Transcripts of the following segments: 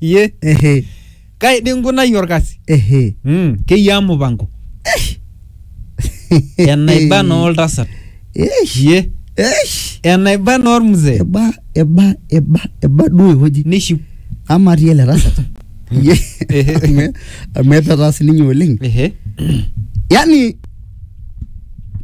iye ehe kai dii nkunai orkasi ehe mm. keyiaa mupango enaiba naa oltasat Eish, iye eish. enaiba naa ormzee eba eba eba eba duo ewueji nishiu ama atii ele tasat Iye. Ehe. Amu- amu etataasi ninye oleng ehe yani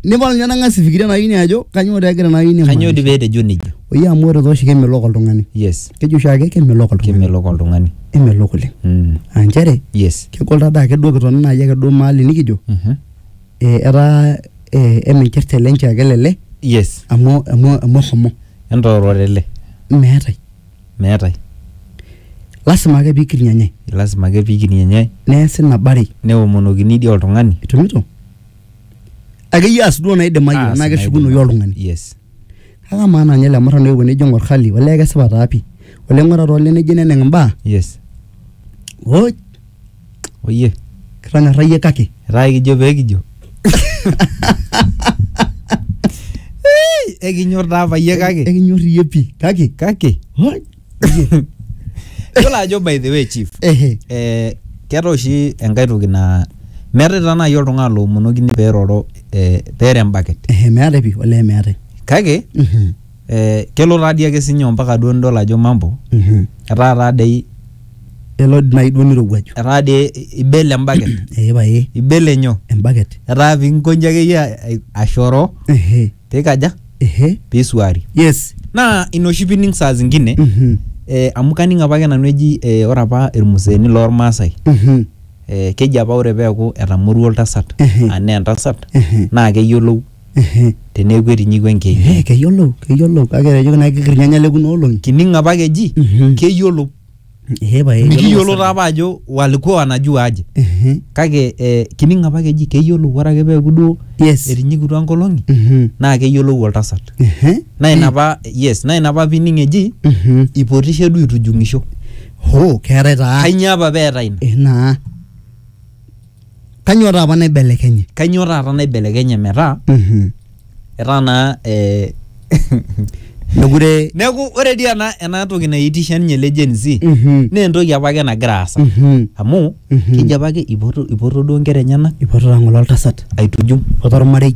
nipal ninye nang'as ifikiria naa ini ajo kanyoo taa egira naa ini Kanyoo amaanisha. dii pee etejo nejia? Oyie amu ore tooshi kemelok oltung'ani. Yes, Keji oshi ake kemelok oltung'ani. kemelok oltung'ani. Emelok oleng. Mm. Aa nchere Yes. kegol taa dii ake duo kitoni naaji ake duo maali nikijo Mhm. eh, etaa eh, eminchircha ele nchoo ake lele Yes. amu amu amu eshomo. Entoororele. Meetae. meetae lasima ake piikiri enye lasima ake pikini enye neesi nabarei neomonokini dii oltung'ani itumito akeyie aas duo naidimayu Aas tenaa keshukunoyu naidimayu. oltung'ani yes kake amaa naa ninye ele murrano oewuo nejo ing'or hali olee kesipa taa pii olee ng'ura taa olee nejo neneng imbaa yes woi Oyie. kitanyorrayie kake Etaa ekijo pee kijo. Ekinyor taa apa iyie kake. ekinyor iyie pii kake Kake. hoi, Yiolo ajo by the way chief. ehe Eh, keeta oshi enkae toki naa meetae taa naaji oltung'ani loomonokini peeroro eh, peere embaket. ehe meetae pii olee meetae kake Mhm. eh, kelo taa dii ake sinye ompaka duo nidol ajo mambo Mhm. etaa taa dei elo nai duo nirowuaju etaa dei ibel embaket ee pae ibel enyo embaket etaa pinkonji akeyie a- ashoro ehe pikaja ehe pisuari yes naa ina oshi pining saa zingine Mhm. eh, amu kaning apake nanu eji eh, ore apa irmuseeni lormaasai Mhm. eh, keji apa ore peeku etamoruo oltasat Ehe. anaa entasat Ehe. naa keyiolou Ehe. teneeku etinyikua enkeju Eh, keyiolou, keyiolou kake etejoki naa kikir irnyanya le kuna olong'i. kining apa ake eji Mhm. keyiolou Ehe pae. mikiyiolo taa apa ajo walikuwa wanajua aje Ehe. kake eh, kining apa ake eji keyiolou ore ake peeku duo Yes. etinyikutua nkolong'i Mhm. naa keyiolou oltasat Ehe. naa ina apa yes naa ina apa pining eji Mhm. ipotishe duo itujung'isho Hoo, keetae taa. kainyoo apa peeta ina Eh, naa. Kanyoo taapa naibelekenye? Kanyoo taata naibelekenye metaa Mhm. etaa naa eh, Mekure neeku ore dii ena ena toki naitisha ninye ele Gen Z Mhm. naa entoki apake nagira aasa Mhm. amu Mhm. keji apake ipoto ipoto duo inkera enyenak Ipotota ng'ole oltasat. aitujumu Ipoto ormarei.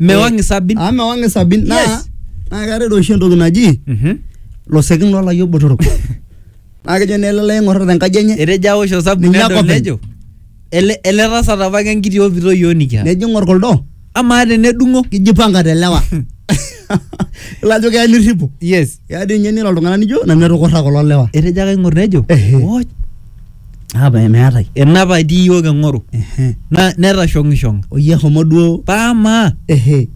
mewang isabin amu mewang isabin naa Yes. naa keetae doi oshi entoki naji Mhm. losekin lolayiok botorok naa kejo naa ele lai ing'orita tenkaji enye etejo awosh osabu Ninye nedol akopeny. nejo ele ele tasat apa ke enkiti opito yioo nikiata nejo ing'or kuldo amaa tenedung'o kijipanga telewa ilo ajo keya nirripo yes keya dii ninye nira oltung'ani nijo nanu etukurra kulo lewa etejo ake aing'or nejo Ehe. "Woj, Ah, me- meetae. enapa etii iyiook eng'oru Ehe. na- netashong'ishong'a Oyie homo duo. paamaa Ehe.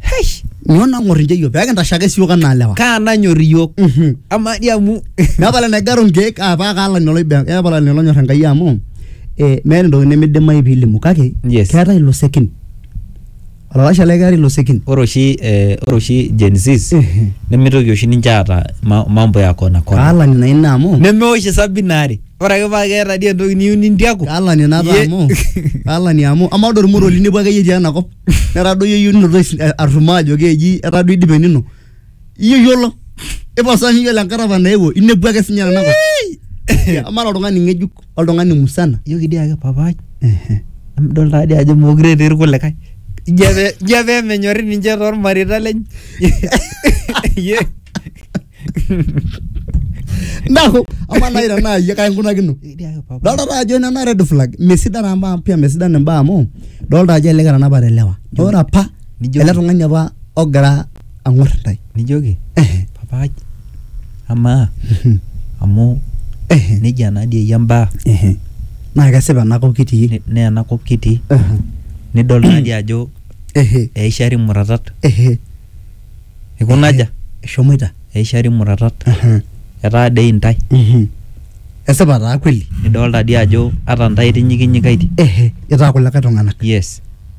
heish Nyoo nang'or inche iyiook pee kintashe ake siook anaa lewa. kaa nanyor iyiook Mhm. amaa dii amu Nepal enegaru nkeek ah, paa kaalani oloibe nepal olene lonyor Enkai amu eh, meeta entoki nimidimayu piilimu kake Yes. keetae ilo sekin Olalashe lai keeta ilosekin. ore oshi eh, ore oshi Gen Zs Ehe. nemitoki oshi ninche aata ma- mambo ya kona kona Kaalani naa ina amu. nemeosh isabi ina are ore ake paa keeta dii entoki niyieu nintiaku Kaalani napa Ye- amu. Kaalani amu. Amaa ode ormorua linepu akeyie tiai ina kop. Netadoyio iyie ninoto is- arrumoo ajo keji etaa duo idipa enino. Iyie iyiolo. Iposa miyiolo enkata apa naewuo. Inepu ake sinye tenakop. Amaa ira oltung'ani ng'ejuk oltung'ani musana. Ijoki dii ake papaai emidol taa dii ajo meekure etii irkulikae. Ijo ake ijo ake emenyori ninche tormareita lenye. Iyie. Neeku amaa nai tenaa iyie kai inkunakino? Ijoki dii ake papaai. Dolta taa ajo nena red flag. Mesidan amu pia mesidan imbaa amu dolta ajo elelek etanapate ilewa. Ore apa Nijoki- ele tung'ani apa ogira ang'or intae nijoki Ehe. papaai amaa amu Ehe. nejia naa dii eyia mbaa Ehe. naa kesipa enakop kitii ne- naa enakop kitii Ehe. nidol naa dii ajo Ehe. eishari muratat Ehe. ikunaja eshomoita eishari muratat Ehe. etaa dei intae Mhm. esipa taa kweli nidolta dii ajo ata intae itinyikinyikaitie Ehe. itaa kulikae tung'anak yes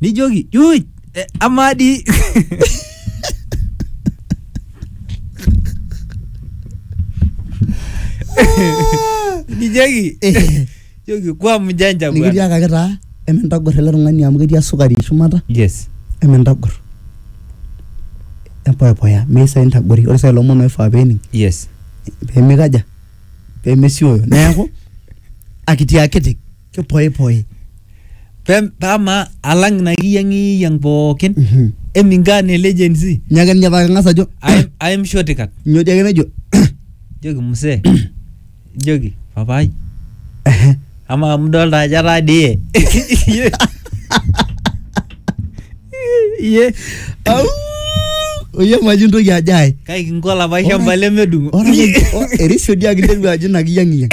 nijoki "Uj, eh, amaa dii nijoki joki kwa mjanja bwana nikitiakaki taa emintagor ele tung'ani amu ketii esukari shumata yes emintagor empoepoya meisa intagori ore sai lomon oifaa pening yes pemikaja pemesioyo neeku akitiakiti kipoipoi pe pama alang na kiyang'iyang pookin Mhm. emingaa ne legency nyaken nyapake ng'as ajo aim aim shotikat nyoo dii ake nejo joki msee joki papai Ehe. ama mdolta ajo ataa die iye Au! oye maji ntoki ajo ae kai kinko olapa shamba lemedung'o Ore ake- o- erisiodi ake interua ajo ina kiyang'iyang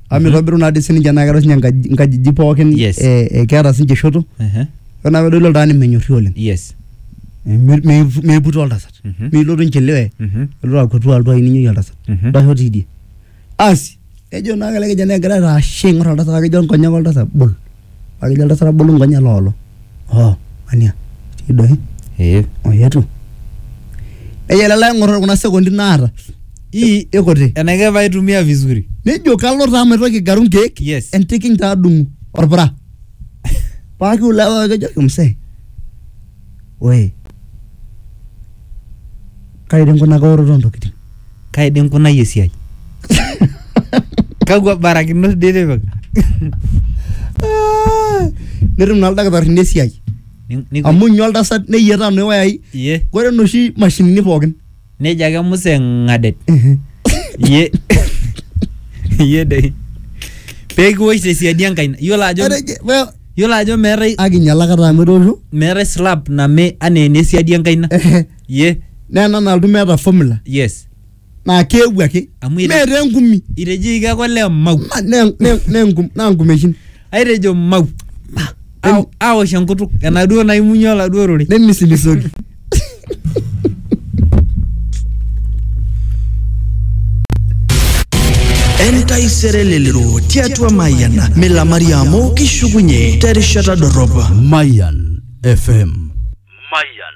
amu mitobiru naa dii sininche naa keeta sinye enkaji- inkajijik pookin Yes. eh, eh, keeta sinche shoto Ehe. ore naa pedoli oltung'ani menyorri oleng yes Eh, mi- mi- miiput oltasat Mhm. milotu inchiliwe Mhm. elotu akutu altu ai ninyoki oltasat Mhm. ndasho tidie asi ejo naa kele kijana egira aitaashe aing'or oltasat akejo nkonyek oltasat bol Pake ejo oltasat abolu nkonyek loolo. Oh, ania, etii doi. Ee. Oyetu. Nejo ele lee ng'or kuna sekondi naata. Ii ikuti. Enaike paitumia vizuri. Nejo kalo taa maitoki agaru nkeek. Yes. Entiking taa adung'u orpura. Pake ulewa kejoki msee. Woi. Kai dei nkunaka oroto oo ntokitin? Kai dei nkunayie esiai? Kakwa barakinot dei itipika? Ah, Netum naa ildakitarini esiai Ni- ni- amu inyo oltasat neyiataa noo wayai Iye. ore noshi mashinini pookin. Nejo ake Musa eng'adet. Iye. Iye dei. Pee kiwosh te siadi enkaina. Iyiolo ajo Etejo- well, iyiolo ajo meetae Akinyala kata amu etoosho. meetae slap name anaa ene siadi enkaina. ye naa ena nalotu meeta formula yes naa keewuo ake Amu ire- meeta engumi itejoki ake ole mau Ma- ne- ne- ne- ngum- naa ngumeshin aitejo mau Aw- aosh enkutuk enaduo naimunye oladuo rore nemisilisoki entaisere lelero tiatua mayian milamari amu kishukunye terishata dorrop Mayan FM. Mayan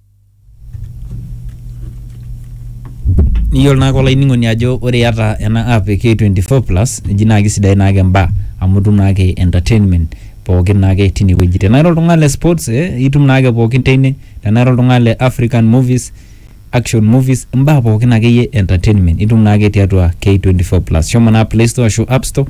Niyiolo naake olainining'oni ajo ore iyata ena app e K24 plus eji naa kisidain naake imbaa amu itum naake entertainment pookin naake tine wueji. Tenaa ira oltung'ani le sports ee itum naake pookin teine, tenaa ira oltung'ani le African movies, action movies, imbaa pookin akeyie e entertainment itum naake tiatua K24 plus. Shomo naa playstore ashu appstore.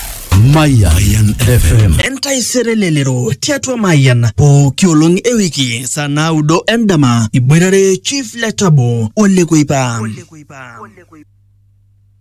Mayan FM. Entaisere lelero tiatua Mayan pooki olong e wiki saa naudo endama iboitare Chief Letabo Ole Kuipa.